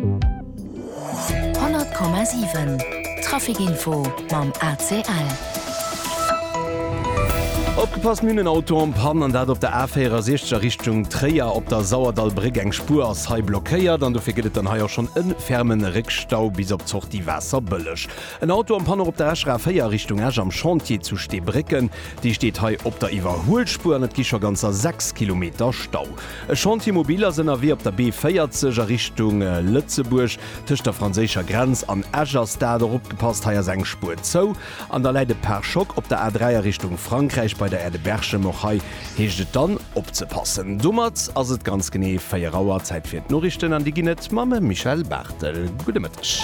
100,7 Trafic Info mam ACL. Opgepasst, mir hunn en Auto en Panne, an dat op der A64 a Richtung Tréier. Op der Sauerdallbréck, eng Spuer ass hei blockéiert an dofir gëtt et dann hei och schonn e ferme Réckstau bis op d'Sortie Waasserbëlleg. En Auto en Panne och op der Escher A4 a Richtung Esch am Chantier zu Steebrécken. Dee steet hei op der Iwwerhuelspuer an et gi scho ganzer 6 Kilometer Stau. E Chantier mobil ass ënnerwee op der B40 a Richtung Lëtzebuerg. Tëscht der franséischer Grenz an Esch ass dat. Och opgepasst, hei ass eng Spuer zou an da läit e Pare-Choc. Op der A3 a Richtung Frankräich bei der Aire de Berchem. Och hei heescht et dann opzepassen. Domat ass et ganz genee 4 Auer. Zäit fir d'Noriichten an déi ginn et mam Michel Barthel. Gudde Mëtteg.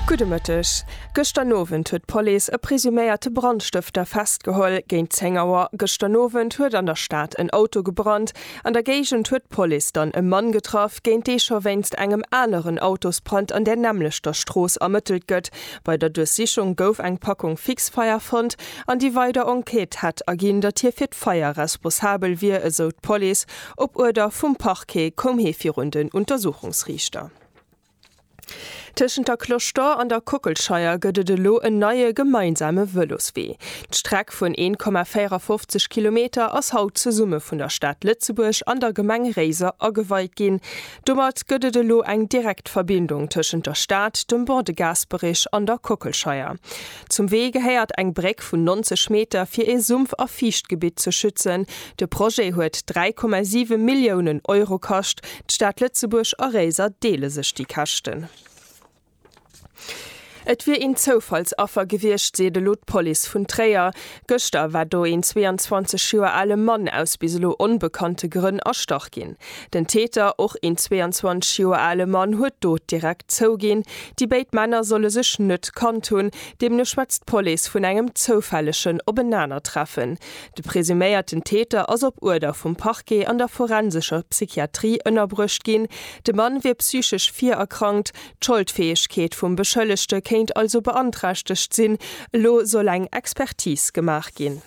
Gudde Mëtteg. Gëschter Nowend huet d'Police e presuméierte Brandstëfter festgeholl. Géint 10 Auer gëschter Nowend huet an der Stad en Auto gebrannt. An der Géigend huet d'Police dann e Mann getraff, géint dee scho wéinst engem aneren Autosbrand an där nämmlechter Strooss ermëttelt gëtt. Bei der Duerchsichung gouf eng Packung Fixfeier fonnt an déi weider Enquête hätt erginn, datt hie fir d'Feier responsabel wier, esou d'Police. Op Uerder vum Parquet koum hie virun den Untersuchungsriichter. Tëschent der Cloche d'Or an der Kockelscheier gëtt et elo en neie gemeinsame Vëloswee. D'Streck vun 1,54 Kilometer ass haut zesumme vun der Stad Lëtzebuerg an der Gemeng Réiser ageweit ginn. Domat gëtt et elo eng direkt Verbindung tëschent der Stad, dem Bord de Gasperich an der Kockelscheier. Zum Wee gehéiert eng Bréck vun 90 Meter fir ee Sumpf a Fiichtgebitt ze schützen. De Projet huet 3,7 Milliounen Euro kascht. D'Stad Lëtzebuerg a Réiser deele sech déi Käschten. Et wier een Zoufallsaffer gewiescht, seet elo d'Police vun Tréier. Gëschter war do een 22 Joer ale Mann aus bis elo onbekannte Grënn erstach ginn. Den Täter, och een 22 Joer ale Mann, huet d'Dot direkt zouginn. Déi béid Männer solle sech net kannt hunn, deemno schwätzt d'Police vun engem zoufällegen Openanertreffen. De presuméierten Täter ass op Uerder vum Parquet an der forensescher Psychiatrie ënnerbruecht ginn. De Mann wier psychesch virerkrankt, D'Scholdfäegkeet vum Beschëllegte kéint also beanträchtegt sinn. Elo soll eng Expertis gemaach ginn.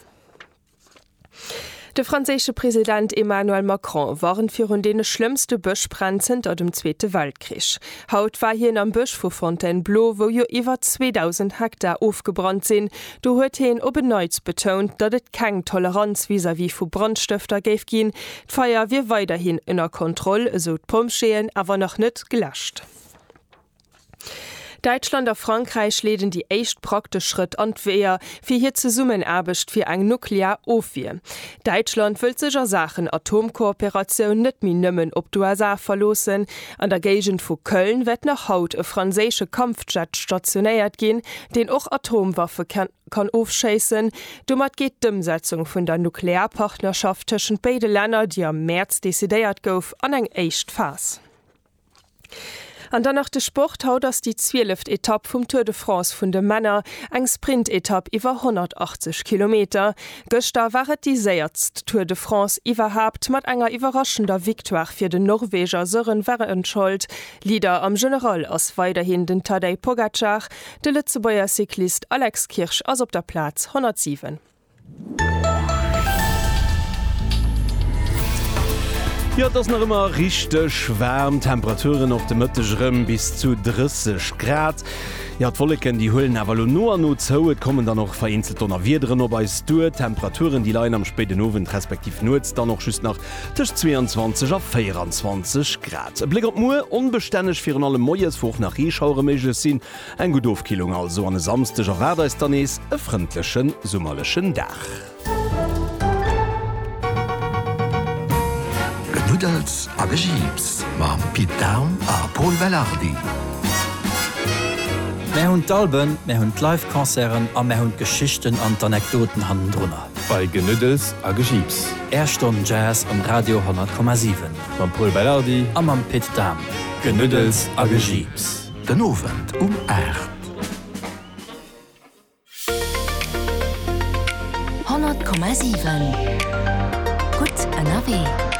De franséische President Emmanuel Macron warnt virun deene schlëmmste Bëschbränn zënter dem Zweete Weltkrich. Haut war hien am Bësch vu Fontainebleau, wou jo iwwer 2.000 Hektar ofgebrannt sinn. Do huet hien op en Neits betount, datt et keng Toleranz vis-à-vis vu Brandstëfter géif ginn, D'Feier wier weiderhin ënner Kontroll, esou d'Pompjeeën, awer nach net geläscht. Däitschland a Frankräich leeden déi éischt praktesch Schrëtt an d'Weeër fir hir Zesummenaarbecht fir eng nuklear Ofwier. Däitschland wëllt sech a Saachen Atomkooperatioun net méi nëmmen op d'USA verloossen. An der Géigend vu Köln wäert nach haut e franséische Kampfjet stationéiert ginn, deen och Atomwaffe kann kann ofschéissen. Domat geet d'Ëmsetzung vun der Nuklearpartnerschaft tëschent béide Länner, déi am Mäerz decidéiert gouf, an eng éischt Phas. An dann nach de Sport, Haut ass déi zwieleft Etapp vum Tour de France vun de Männer, eng Sprintetapp iwwer 180 Kilometer. Gëschter war et déi séiertst Tour de France iwwerhaapt, mat enger iwwerraschender Victoire fir den Norweger Søren Wærenskjold. Leader am General ass weiderhin den Tadej Pogacar. De Lëtzebuerger Cyclist Alex Kirsch ass op der Plaz 107. Jo, et ass nach ëmmer richteg waarm, Temperaturen och de Mëtteg erëm bis zu 30 Grad. Jo, d'Wolleken, déi huelen awer elo no a no zou, et kommen dann och vereenzelt Donnerwiederen op eis duer. D'Temperaturen, déi leien am spéiden Owend respektiv Nuets dann och just nach Tëscht 22 a 24 Grad. E Bléck op muer, Onbestänneg, virun allem moies, wou och nach Reeschauere méiglech sinn. Eng gutt Ofkillung also an e Samsdeg erwaart eis dann nees e frëndleche summerlechen Dag. Genuddels a Gejiips mam Pit Dahm a Pol Belardi. Mär hunn d'Alben, mär hunn d'Live-Concerten a mär hunn d'Geschichten an d'Anekdoten hannendrunner. Bei Genuddels a Gejiips. Är Stonn Jazz um Radio 100,7. Mam Pol Belardi. A mam Pit Dahm. Genuddels a Gejiips. Den Owend um 8. 100,7 Gutt ënnerwee.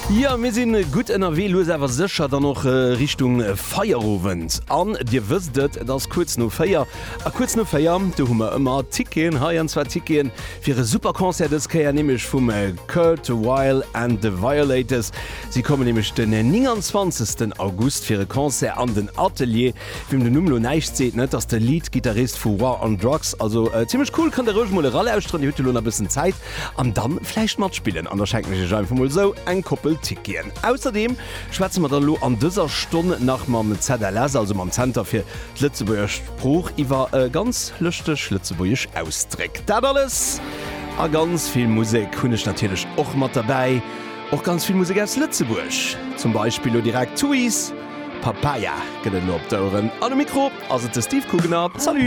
Jo, mir sinn gutt ënnerwee, lues awer sécher dann och Richtung Feierowend. An Dir wësst et, et ass kuerz no 4. A kuerz no 4 Auer, do hu mer ëmmer Ticketen hei, an zwar Ticketen fir e super Concert dës Kéier, nämlech vum Kurt Weill and the Violators. Si kommen nämlech den 29 August fir e Concert an den Atelier. Wiem den Numm elo näischt seet, net ass de Lead-Gittarist vu War on Drugs. Also zimmlech cool, kënnt Der roueg mol eralauschteren, Dir hutt jo elo nach e bëssen Zäit, an da vläicht matspillen. An da schenken ech Iech einfach mol esou eng Koppel Ticketen. Ausserdeem schwätze mer dann elo an dëser Stonn nach mam ZLS, also mam Zenter fir D'Lëtzebuerger Sprooch iwwer e ganz lëschteg lëtzebuergesch Ausdréck. Dat alles a ganz vill Musek hunn ech natierlech och mat derbäi. Och ganz vill Musek aus Lëtzebuerg, zum Beispill lo direkt Tuys, Papaya gëtt et elo op d'Oueren. An um Mikro ass et de Steve Kugener. Salut!